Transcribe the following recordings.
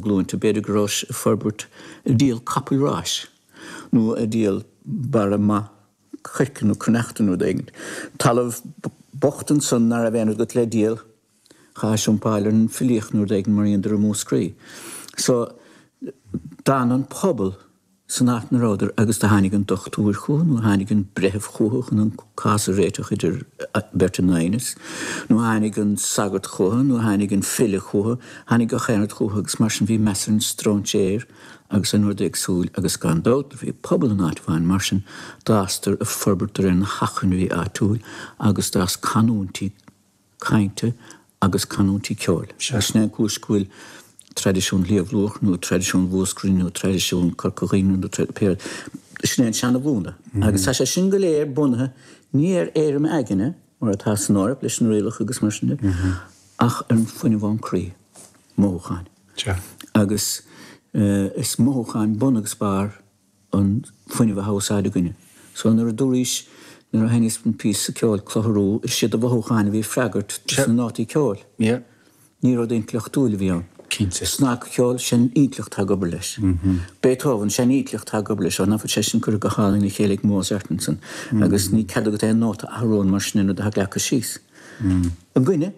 glúinte. B'fhéidir go rabhais ag forbairt ag díol capaill ráis nó ag díol barra maith coirce nó cruithneachta nó rud éigin. Talamh bocht ansan ná raibh aon rud agat le díol, chaithis iompáil ar an filíocht nó rud éigin mar a dheineadar i Múscraí. So d'fhan an pobal san áit 'na rabhadar agus do tháinig an dochtúir chúthu nó tháinig an breitheamh chúthu chun an cás a réiteach idir beirt in aighneas, nó tháinig an sagart chúthu nó tháinig an file chúthu, tháinig gach aon rud chúthu agus mar sin bhí meas ar an stróinséir agus ar an rud éagsúil agus gan dabht bhí pobal in áit amháin mar sin d'fhásadar ag forbairt ar na hacmhainní áitiúil agus d'fhás canúintí cainte agus canúintí ceoil. So sin é an cúis go bhfuil traidisiún Shliabh Luachra nó traidisiún Mhúscraí nó traidisiún Corca Dhuibhne nó sin é an seana-mhúnla agus tá sé sin go léir bunaithe ní ar éirim aigne, mar atá san Eoraip leis na rialacha agus mar sin de, ach ar an fuinneamh ón croí, mothúcháin. Agus is mothúcháin bun agus barr an fuinneamh thá in úsáid againne. So nuair a dúraís, nuair a sheinneas an píosa ceoil clutharú, is iad do mhothúcháin a bhí ag freagairt dos na nótaí ceoil. Ní rud intleachtúil a bhí ann. Cinnte. Snagcheol, sin intleacht thá ag obair leis. Beethoven, sin intleacht thá ag obair leis, nó tá sé sin curtha go hálainn le chéile ag Mozart ansan agus níl cead agat aon nóta a athrú ann mar sin an rud a thá leagtha síos. Againne?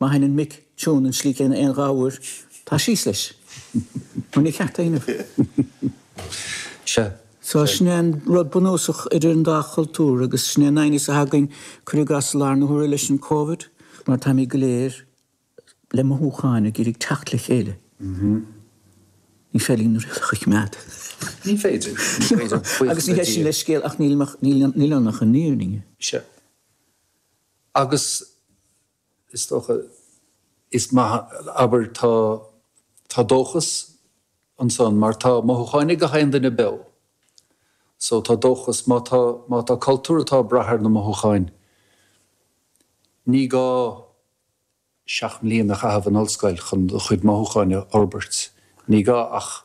Má sheinneann mic tiún an slí céanna aon dhá uair, tá síos leis. Nó níor cheart éinne. Sea, sin é an rud bunúsach idir an dá chultúr agus sin é an aighneas a thagann, cuir i gcás, i lár na huaire leis an Covid, mar táimid go léir le mothúcháin ag iarraidh teacht le chéile. Ní féidir linn na rialacha a choimeád. Ní féidir. Agus ní hé sin leithscéal ach níl ann ach an fhírinne. Sea. Agus. Is dócha, is maith, abair, tá, tá dóchas ansan mar tá mothúcháin ag gach aon duine beo. So tá dóchas, má tá, má tá cultúr atá ag brath ar na mothúcháin, ní gá seacht mbliain a chaitheamh in ollscoil chun do chuid mothúcháin a fhorbairt, ní gá ach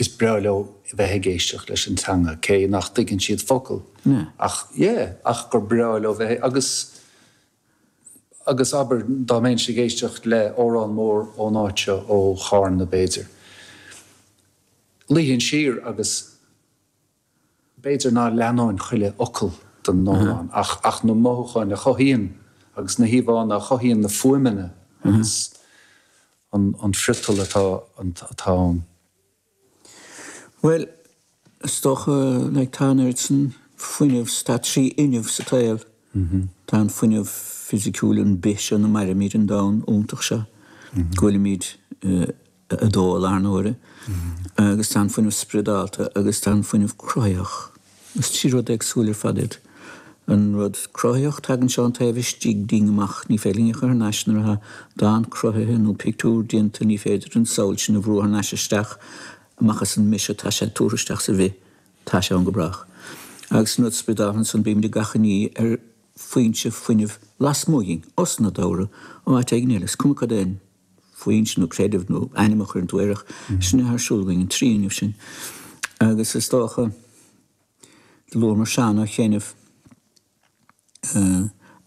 is breá leo bheith ag éisteacht leis an teanga cé nach dtuigeann siad focal ach yeah ach gur breá leo bheith agus agus abair dá mbeinnse ag éisteacht le amhrán mór ón áit seo ó Chárna b'fhéidir luífinn siar agus B'fhéidir ná leanóinn chuile fhocal den amhrán ach ach na mothúcháin a chothaíonn agus na híomhánna a chothaíonn na fuaimeanna agus an an friotal atá atá ann. Bhuel, is dócha like tá an oiread san fuinneamh, tá trí fhuinneamh sa tsaol. Tá an fuinneamh fisiciúil, an bith seo ina mairimid, an domhan iontach seo go bhfuilimid eh, 2 i lár na huaire agus tá an fuinneamh spriodálta agus tá an fuinneamh cruthaitheach. Is trí rud éagsúil ar fad iad. An rud cruthaitheach tagann sé ón taobh istigh dínn amach. Ní féidir linn a chur thar n-ais nuair atá dán cruthaithe nó pictiúr déanta ní féidir an samhail sin a bhrú thar n-ais isteach amach as an mise tá sé tabhartha isteach sa bhith tá sé ann go brách. Agus an rud spriodáltha ansan bímid ag achainí ar foinse fuinnimh lasmuigh dhínn, osnádúrtha, ó áit éigin eile. Is cuma cad é an. foinse nó creideamh nó ainm a chuireann tú air ach sin atá ar siúl againn, an trí fhuinneamh sin. Agus is dócha, do luamar Seán ó chianaibh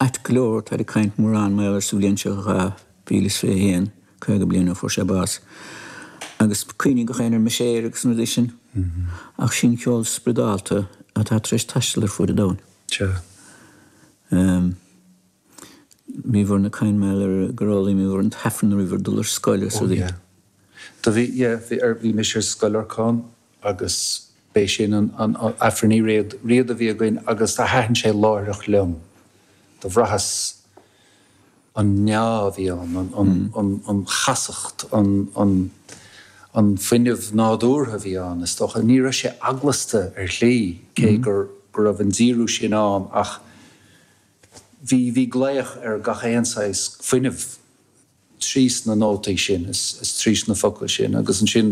ait go leor, táid ag caint mórán mar gheall air sa bhliain seo 2021, caoga bliain ó fuair sé bás. Agus cuimhníonn gach éinne ar Mise Éire agus na rudaí sin. Ach sé an ceol spriodálta atá tar éis taisteal ar fuaid an domhain. Sure. bhíobhair ag caint mar gheall ar gur fhoghlaimíobhair an t-aifreann nuair a bhíobhair ag dul ar scoil ansúd. Do bhí, yeah, bhí ar, bhí mise ar Scoil Lorcáin agus b'é sin an, an, an aifreann Uí Riada, Riada a bhí againn agus do thaitn sé láithreach liom. Do bhraitheas an meá a bhí ann, an, an, an, an chastacht, an, an, an fuinneamh nádúrtha a bhí ann is dócha. Ní raibh sé eaglasta ar shlí cé gur, go raibh an díriú sin ann ach. Bhí, bhí glaoch ar gach aon saghas fuinneamh trís na nótaí sin is trís na focla sin agus ansin,